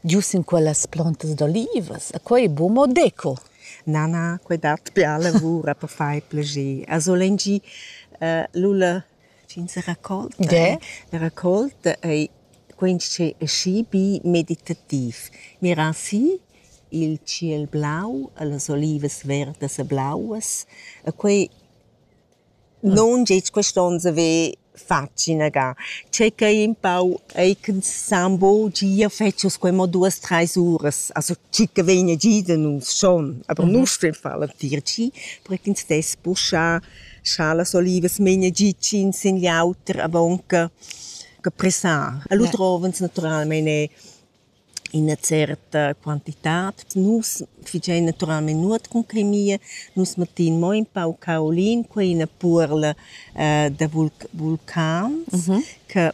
giu sin quellas plantas d'olivas. E quei bu mo deco. Na, na, quei dat bia lavura per far plager. A solengi uh, l'ulla fin se raccolta. De? La raccolta ei quens che è schi bi meditativ. Miran si il ciel blau e las olivas verdas e blauas e quei Non gest quest'onn se ve fatg inagà. Tschecca ei un pau ei ch'ensemble gia fetschas quei mo duas treis uras. Also tschicca vegna gia da nus schon, aber nus stuein far l'entir gi, perché ins dess puschà, scha las olivas megnan gia tschins in l'auter avonca che pressar. E lu drovans naturalmein er ina certa quantitad. Nus figein naturalmein nuot cun clemia. Nus mettein mo in pau caolin, quei ina puorla da vulcans che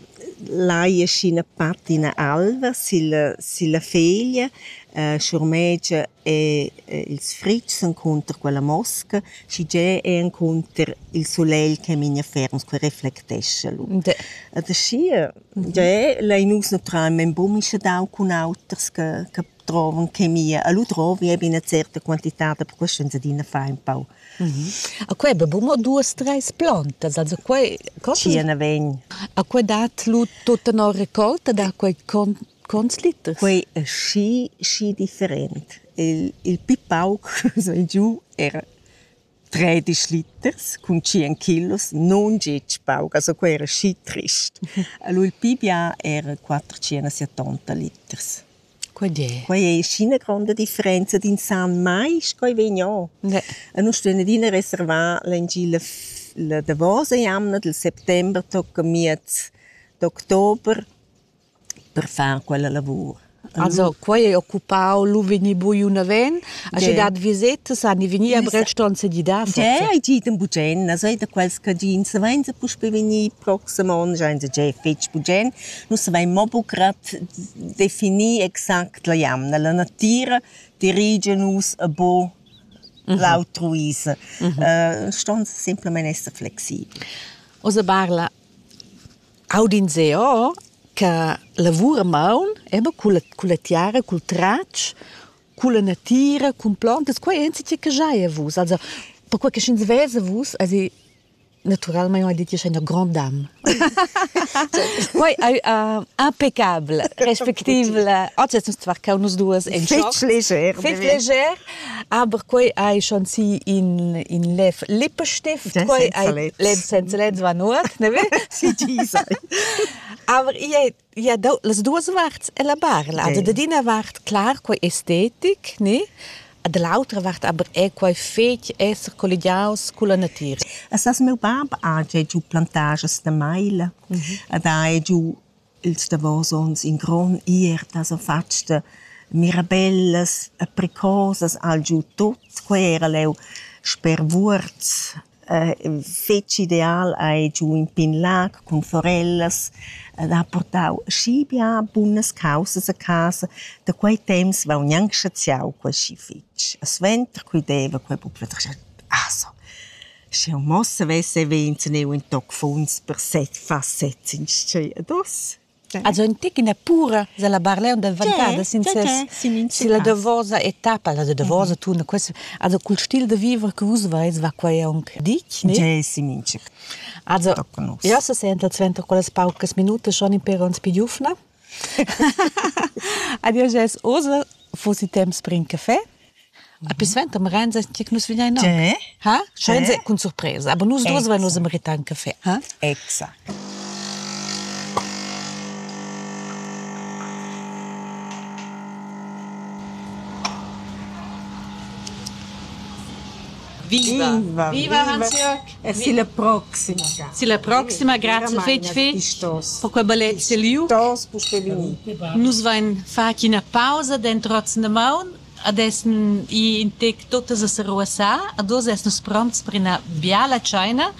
lai aschi ina patina alva silla silla feglia, schurmegia e ils fritgs encunter quella mosca, schigea è encunter il sulegl che memia ferm, quei reflectescha lu. Ed aschia Jeu lein uss naturalmein buca mischadau cun auters che che drovan chemia. E lu drovi ei be ina certa quantitad, per questo ein adina fai empau. A quei ei buca mo duas, treis plantas, also quei Tschia naven. A quei dat lu tut tenor raccolta da quei conts liters? Quei ei schi schi different. Il il pi pauc, so giu, era tredisch liters cun tschien kilos nun gitg pauc, also quei era schi trist. Allura il pi bia era quatter centosettonta liters. Quei è. Quei è schi ina gronda differenza d'insan mai sco ei vegn o. Ne. E nus stuein adina reservar l'engi la la davosa jamna del settember tocca miez d'october per far quella lavur. Also, quei ei occupau lu vegni buiu naven, aschi dat visetas han i vegnir a Breston se di da. Dè, ei ti dem bugen, also ei da quels cadins savein se puspe vegnir proxim onn, schein se gei fetg bugen. Nus savein mo bucrad definir exact la jamna. La natira dirigia nus a bo l'altruisa. Ston semplamein esser flexibel. Oz barla Aud'ins eau cha lavur a maun è be culla culla tiara, cul tratsch, culla natira, cun plantas, quai è insatge che giaja vus. Also perquai che sch'ins vesa vus esi natüralmaing ho dit ch'io stai üna grond'am. Quai ais impeccabel, respectivel. Oggi essans tvarchau nus duos in schoc. Fetg leger. Fetg leger. Aber quei ei schon si in in lev Lippenstift, quei ei lev senza lez va nuot, ne si ti sai. Aber ia ia do las duas varts e la barla. Da d'ina vart clar quei estetic, ne? Da l'autra vart aber è quei fetg esser colligiaus con la natira. Essas meu bab ha giu plantages da maila, mhm. ed ha giu Ils davos onns in grond ierta s'han fatg da mirabellas e precosas al giu tut. Quei era leu sper Vuorz fetg ideal, hai giu in pign lag cun forellas ed ha purtau schi bia bunas caussas a casa. Da quei temps vegn gnanc saziau quei schi fetg. E suenter, quei deva quei buca pli. Ah so. Sch'eu mo savess haver inzuneu ün toc funs per set far sets inschè ad os. Also ün tic üna pura s'ha la Barlèun davantada sin ses silla davosa etappa. La davosa turna questa also cul stil da viver che vus vais va quai aunc ditg, ne? Ge si minchir. Also, jeu se senta suenter quellas paucas minutas schon impero ans più giufna. Adio Jess Ursel, fossi temps per in caffè? A pi suenter merenza che nus vegnein no. Ha? Sche cun surpresa. Aber nus due vai nus meritar un caffè. Ha? Exact. Viva! Viva, Hans-Jörg! E silla proxima ga. Silla proxima, grazia fetg fetg per quei ballet seliu. Nus vein fatg ina pausa d'entrotzen da maun ad essen i in tec tuttas a seruassar, ad oz essen nus pronts per ina biala tscheina